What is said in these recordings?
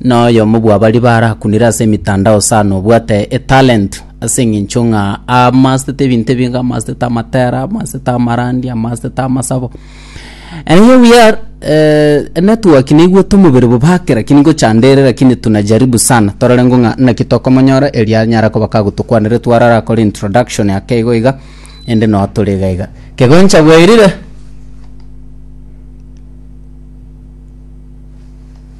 Noyomo bw'abaria barakunire ase emitandao sana obwate etalent ase eng'encho ng'a amasete ebinto ebinge amasete amatera amasete amarandi amasete amasabo and here we are uh, network neigwete omobere bobake lakini ngochanda ere lakini tunajaribu sana torore ng'o ng'a naki tokomonyora eria anyara koba kagotokwanere twarara akore introduction yake igo iga ende noo tore iga iga kegoncha bwairire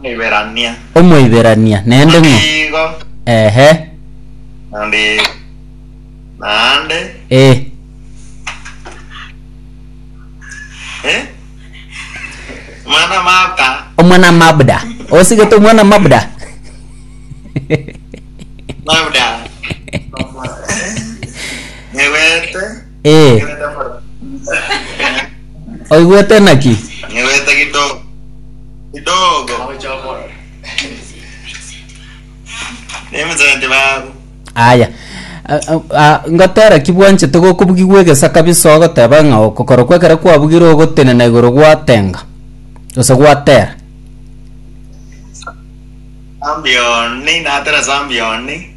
Omoiberania. Omoiberania nende ng'o? Nigo. Ehe. Naende. Naende. Eh. Eh. Mwana mabda. Omwana mabda. Osigete omwana mabda. Mabda. Newete. Ee. Oigwete naki? Nyoigwete kidogo. Kidogo. Nemusenti babo. Aya. A- a- a- ngotera ki bwanchete gokobugigwa egesa kabisa ogoteba ng'a okokoro kwa ekero kwabugire ogotenena igoro gwatenga gose gwatera Ambioni, natera ase ambioni.